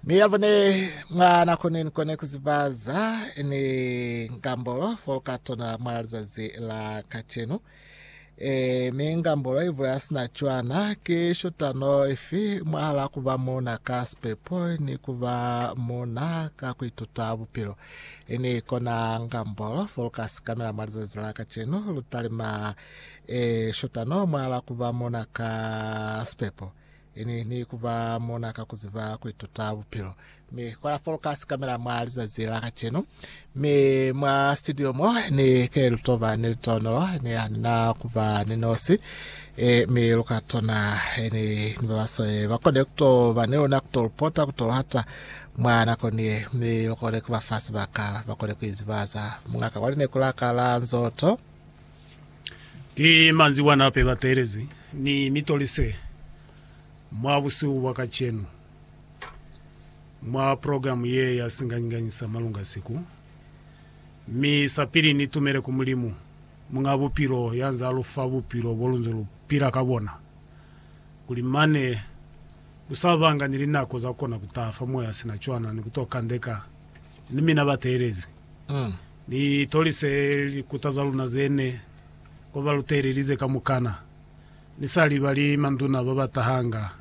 mi yalvo ne mwa na kone ni kone kuzibaza ni ngambolo foloka tona mwa lizazi la kacenu e mi ngambolo ivo ya sina cwana ke shotano ifi mwahala kuba muna ka sipepo ni kuba muna ka kuituta bupilo ini kona ngambolo foloka sikamela mwa lizazi la kacenu lutalima e shotano mwahala kuba muna ka sipepo Ini ni ku ba mona ka ku ziba ku ituta bupilo. Mi kwa la foloka sikamela mwa lizazi la kacenu. Mi mwa studio mo ni ke lu to ba ni litonolo, ni ha ni na ku ba ni nosi. E, mi lu ka tona e, ni, ni ba baswale ba kone ku to ba ni luna, ku to lu pota, ku to lu hata mwa nako ni ye. Mi lu kone ku ba fa sibaka ba kone ku izibaza. Muñ'a ka kwa lineku la ka la nzoto. Ki manzwi bana hape ba teelezi, Ni mi tolise mwa busihu bwa kacenu mwa progilamu ye ya singanyinyisa malunga siku. Mi sapili ni tumele ku Mulimu, Muñ'a Bupilo, ya nz'a lu fa bupilo bo lu nze lu pila ka bona, kuli mane lu sa banga ni linako za kona ku taha fa moya sina cwana ni ku to kandeka ni mina bateelezi. Ni tolise likuta za luna ze ne kwa ba lutelelize kamukana. Ni sa libali manduna ba ba tahanga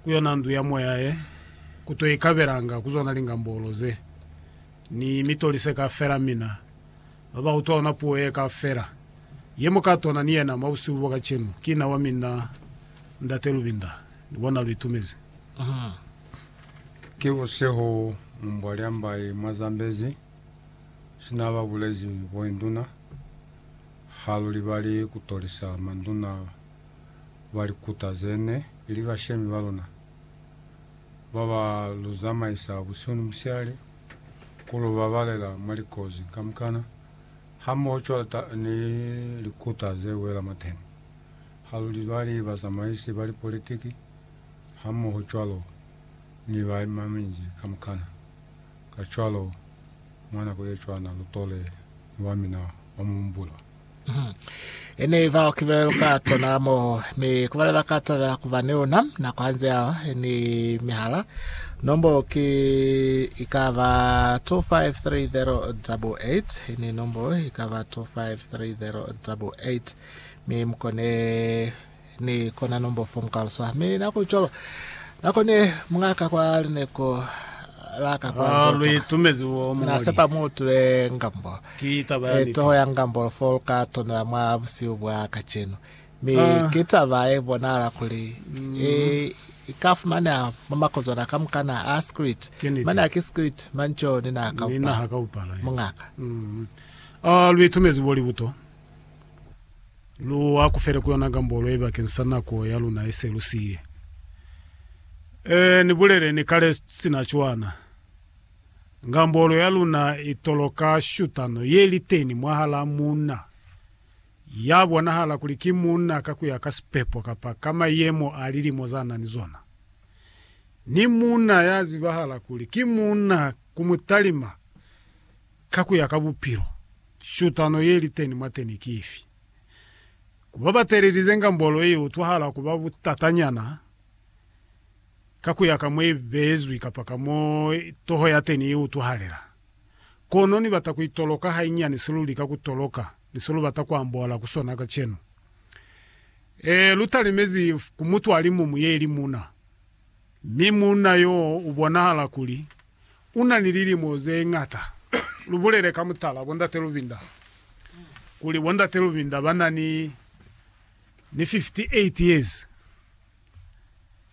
ku yona ndu ya moya ye, ku to ikabelanga ku zona lingambolo ze. Ni mi tolise kafela mina ba ba utwa ona puo ye kafela ye mu ka tona ni yena mwa busihu bo kacenu. Ki na wa mina Ndate Lubinda, ni bona lu itumezi. Ki busihu, mu mbwa lya mba ye mwa Zambezi. sina ba bulezi boinduna ha lu libali ku tolisa manduna ba likuta ze ne li bashemi ba luna, ba ba lu zamaisa busihu ni musihali, ku lu babalela mwa likozi kamukana, hamoho cwalo ni likuta ze wela mwateni. Ha lu libali bazamaisi ba lipolitiki hamoho cwalo ni baimamiji kamukana. Kacwalo, mwa nako ye cwana lu tole ni wa mina wa mu humbula. Ini bao ki be lu ka tona mo, mi ku bale ba ka tabela ku ba ni luna nako hanze ya lwa ni mihala. Nombolo ki i ka ba 253088. Ini nombolo i ka ba 253088, mi mu kone ni kona nombo fomu kaluswa mi na ku colo na kone mungaka kwa lineko laka kwa Ah, nzoto lui tumezi wo na mongoli. sepa mu tule ngambo Ki taba ya e niti. toho ya ngambo fo lu ka tonela mwa busiu bwa kacenu mi Ah. ki taba e bonala kuli e i ka fumaneha mwa makozwana ka mukana a script Ki niti. mane a ki script manco ni na ka Ni upa naha ka upala. mungaka Mm. Ah, lui tumezi wo libuto. Lu akufele ku yona gambolo ye bakeng sa nako ya luna ye se lu siile. Ee, ni bulele ni kale sina cwana. Gambolo ya luna i toloka shutano ye li teni mwahalaa muuna ya bonahala kuli ki muuna ka ku ya ka sipepo kapa ka mayemo a lilimo za na ni zona, ni muuna ya zibahala kuli ki muuna ku mutalima. Ka ku ya ka bupilo, shutano ye li teni mwateni ki ifi? Ku ba batelelize ngambolo i utwahala ku ba butatanyana ka ku ya ka mo i beezwi kapa ka mo toho ya teni i utwahalela. Kono ni bata ku itoloka hainyani se lu lika ku toloka ni se lu bata ku ambola ku sona kacenu. Ee, lu talimezi ku mutu a li muñwi ye li muuna, mi muuna yo u bonahala kuli U na ni lilimo ze ñata. Lu bulele ka mutala, bo Ndate Lubinda, kuli bo Ndate Lubinda ba na ni, ni 58 years.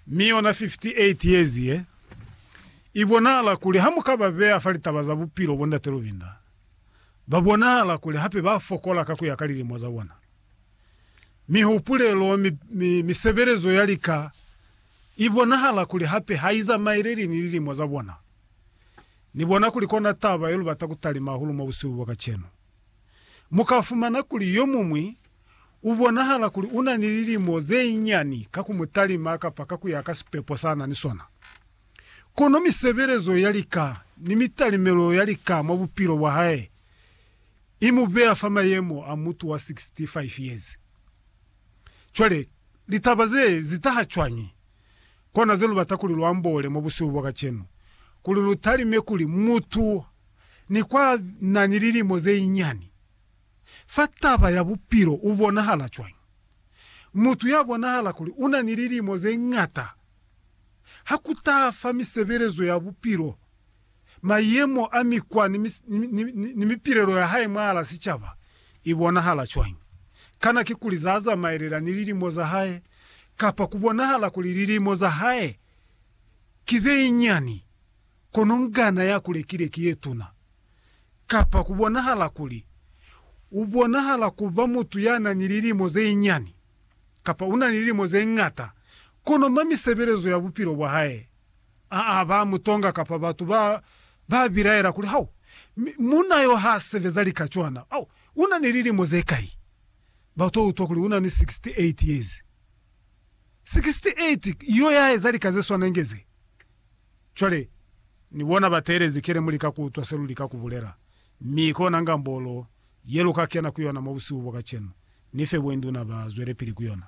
Mi yona 58 years ye, i bonahala kuli ha mu ka ba beya fa litaba za bupilo bo Ndate Lubinda, ba bonahala kuli hape ba fokola ka ku ya ka lilimo za bona. Mihupulelo, mi, mi, misebelezo ya lika, I bonahala kuli hape ha i zamaeleli ni lilimo za bona. Ni bona kuli kona taba ye lu bata ku talima hahulu mwa busihu bwa kacenu. Mu ka fumana kuli yo muñwi u bonahala kuli u na ni lilimo ze nyani ka ku mu talima kapa ka ku ya ka sipepo sa na ni sona. Kono misebelezo ya lika ni mitalimelo ya lika mwa bupilo bwa hae i mu beya fa mayemo a mutu wa 65 years. Cwale, litaba ze zi taha cwañi? Kona ze lu bata kuli lu amboole mwa busihu bwa kacenu, kuli lu talime kuli mutu ni kwa na ni lilimo ze inyani fa taba ya bupilo u bonahala cwañi. Mutu ya bonahala kuli una ni lilimo ze ñata ha ku taha fa misebelezo ya bupilo, mayemo a mikwa ni mipilelo ya hae mwahal'a sicaba i bonahala cwañi? Kana kikuli za zamaelela ni lilimo za hae, kapa ku bonahala kuli lilimo za hae ki ze nyinyani, kono ngana ya ku lekile ki ye tuna? Kapa ku bonahala kuli u bonahala ku ba mutu ya na ni lilimo ze nyinyani, kapa u na ni lilimo ze ñata, kono mwa misebelezo ya bupilo bwa hae Aa ba mu tonga kapa batu ba ba bilaela kuli, Hau, mi munna yo ha sebeza lika cwana. Au, u na ni lilimo ze kai? Ba to utwa kuli u na ni 68 years. 68 yo ya eza lika ze swanenge ze. Cwale, ni bona ba teelezi kele mo lika ku utwa se lu lika ku bulela, mi kona ngambolo ye lu ka kena ku yona mwa busihu bwa kacenu, ni fe bwenduna ba zwelepili ku yona.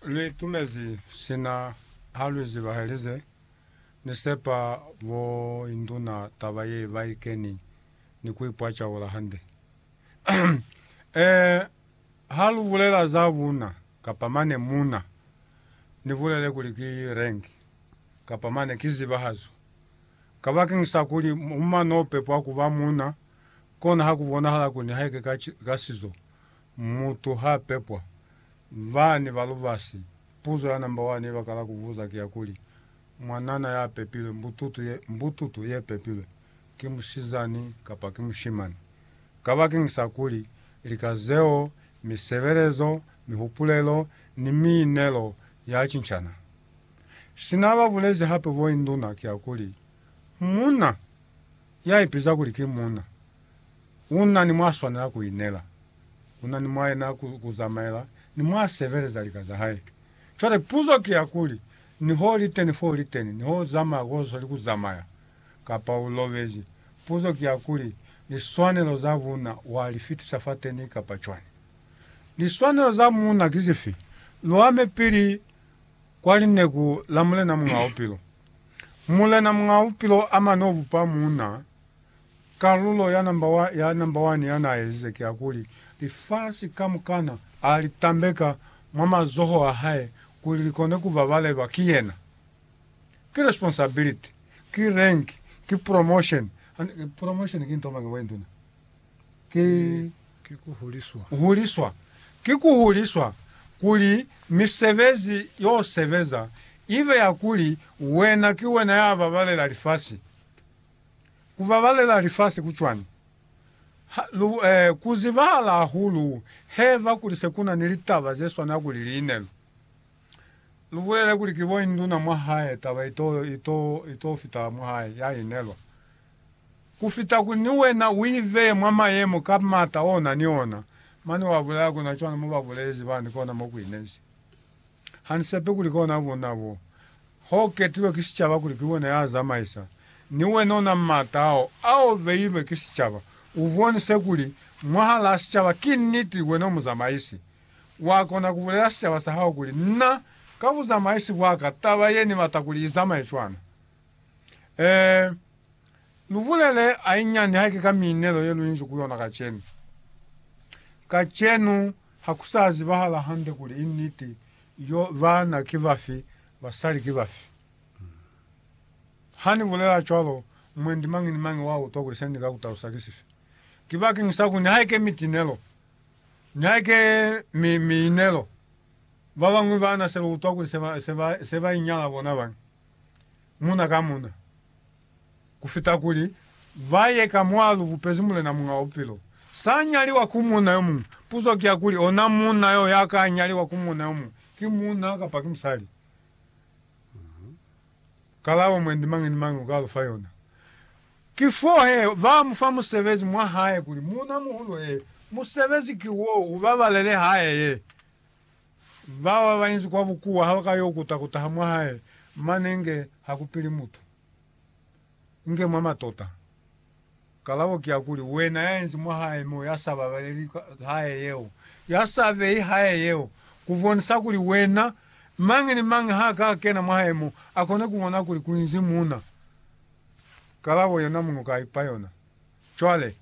Lwiitumezi sina ha lwi zibahelize. Ni sepa bo induna taba ye ba i keni ni ku ipwacaula hande. Ee, ha lu bulela za buna, kapa mane muna, ni bulele kuli ki rank, kapa mane ki zibahazo. Kabakeng sa kuli muma no pepwa kuba muna, kona ha ku bonahala kuli nihaike ka sizo, Mutu ha pepwa, bani ba lubasi? Puzo ya namba wani ibakala kubuza ki ya kuli, Mwanana ya pepilwe, mbututu ye, mbututu ye pepilwe, ki musizani kapa ki mushimani? Kabakeng sa kuli, lika zeo, misebelezo, mihupulelo, ni miinelo ya cincana. Sina ba bulezi hape bo induna ki ya kuli, Muuna, ya ipiza kuli ki muuna, Kuna ni mwa swanela ku inela, kuna ni mwa yena ku, ku zamaela, ni mwa sebeleza lika za hae. Cwale puzo ki ya kuli, niho li teni fo li teni, niho u zamaya ko zoli ku zamaya, kapa u lobezi, puzo ki ya kuli, liswanelo za bunna wa li fitisa fateni kapa cwani? Liswanelo za munna ki zifi? Lu ame pili kwa lineku la Mulena Muñaa Bupilo. Mulena Muñaa Bupilo a mane u bupa munna. Kalulo ya namba wa, ya namba wani ya n'a ezize ki ya kuli, lifasi kamukana a li tambeka mwa mazoho a hae kuli li kone ku babalelwa ki yena. Ki responsibility, ki rank, ki promotion. Hande, promotion ki nto mañi, Bointuna? Ki, Ki ku huliswa. huliswa. Ki ku huliswa kuli misebezi y'o sebeza i be ya kuli wena ki wena ya babalela lifasi. Ku babalela lifasi ku cwani? Ha lu ku zibahala hahulu heba kuli se ku na ni litaba ze swana kuli line. Lu lu bulele kuli ki bo induna mwa hae taba i to, i to, i to fita mwa hae, ya inelwa. Ku fita kuli ni wena u i beye mwa mayemo ka m'ata o na ni ona. Mane wa bulela ku na cwana mo ba bulezi bani kona mo ku inezi. Ha ni sepe kuli kona bona bo ho ketilwe ki sicaba kuli ki bona ya zamaisa ni wena ona mata ao ao beilwe ki sicaba. U bonise kuli mwahalaa sicaba ki niti wena u muzamaisi. Wa kona ku bulela sicaba sa hao kuli, Na, ka buzamaisi bwa ka, taba ye ni bata kuli i zamaye cwana. Ee. Lubulele hainyani haike ka miinelo yeluinzi ku yona kacenu. Kacenu hakusaa zibahala hande kuli i niti yo baana ki bafi, basali ki bafi. Hani bulela cwalo, mwendi mañi ni mañi wa utwa kuli senika kutalusa ki sifi. Ki bakeng sa kuli nihaike mitinelo, nihaike mi, miinelo, babañwi baana seba utwa kuli seba, seba, seba inyala bona bañi. muna ka muna, kufita kuli ba ye ka mwa lu bupezi Mulena Muñ'a wa Bupilo. Sa nyaliwa ku muna yo muñwi. Puzo ki ya kuli, ona muna yo ya ka nyaliwa ku muna yo muñwi, ki muna kapa ki musali? Kalabo mwendi mañi ni mañi u ka lu fa yona, ki fo he ba mu fa musebezi mwa hae kuli, Muna muhulu, ee, musebezi ki wo, u babalele hae ye. Bao babañi kwa bukuwa habaka yo kuta kutaha mwa hae, mane nge hakupili mutu. Nge mwa matota. Kalabo ki ya kuli, wena yaenzi mwa hae mo yasa babaleli hae yeo, yasa beyi hae yeo, kubonisa kuli wena, mañi ni mañi ha ka kena mwa hae mo, akone kubona kuli kuinzi muna. Kalabo yona muñwi ka ipa yona. Cwale,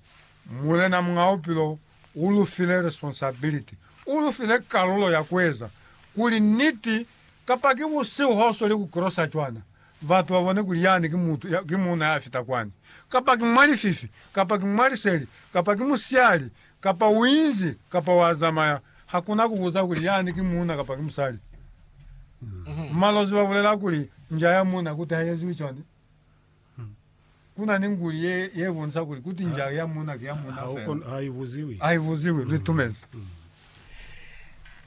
Mulena Muñ'a Bupilo u lu file responsibility, u lu file kalulo ya ku eza kuli niti, kapa ki busihu ha u sweli ku krosa cwana, batu ba bone kuli yani ki mutu ya, ki muuna ya fita kwani, kapa ki mwa lififi, kapa ki mwa liseli, kapa ki musiali, kapa u inzi, kapa wa zamaya. Ha ku na ku buza kuli yani ki muuna kapa ki musali. Malozi ba bulela kuli nja ya muuna kuti ha i eziwi cwani. Kuna ni nguli ye, ye bonisa kuli kuti nja ya muna ki ya muna Ha u fela. kon- ha i buziwi. Ai buziwi, lu itumezi.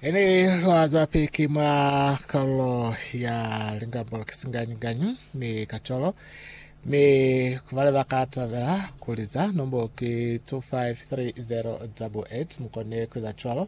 Ili lwa zwapiki mwa kalulo ya lingambolo ki singanyi-nganyi ni kacwalo, mi ku bale ba ka tabela ku liza, nombolo ki 253088, mu kone ku eza cwalo.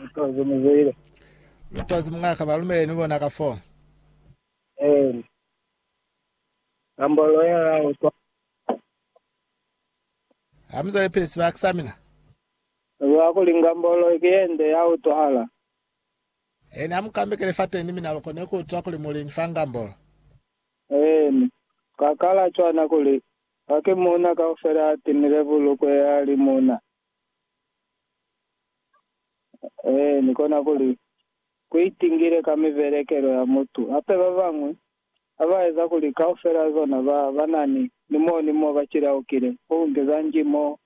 Lutwazi muzwile. Lutwazi mungaka balumele ni bona ka fo. Eni. Kambolo ya la utwa. Hamuzale pele sibaka sa mina. Lwa kuli ngambolo ke yende ya utwahala. Eni amukambekele fa teni mina lukone ku utwa kuli muli ni fa ngambolo. Eni. Kakala cwana kuli, kake muna kaufela atinile bulukwe ya li muna. Ee, ni kona kuli, ku itingile ka mibelekelo ya mutu. Hape ba bañwi ha ba eza kuli kaufel'a zona ba ba na ni, ni mo ni mo ba cilaukile, ku nge za nji mo,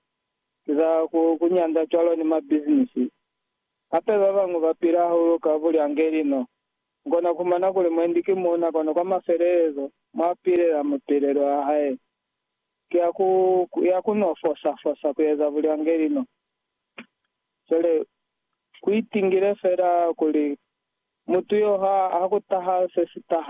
ki za ku, ku nyanda cwalo ni mabizinisi. Hape ba bañwi ba pila hahulu ka bulyangeli no. Mu kona ku fumana kuli mwendi ki muuna kono kwa mafelelezo mwa pilela mapilelo a hae. ki ya ku, ya ku no fosa, fosa ku eza bulyangeli no. Cwale, ku itingile fela kuli mutu yo ha, ha ku taha se si taha.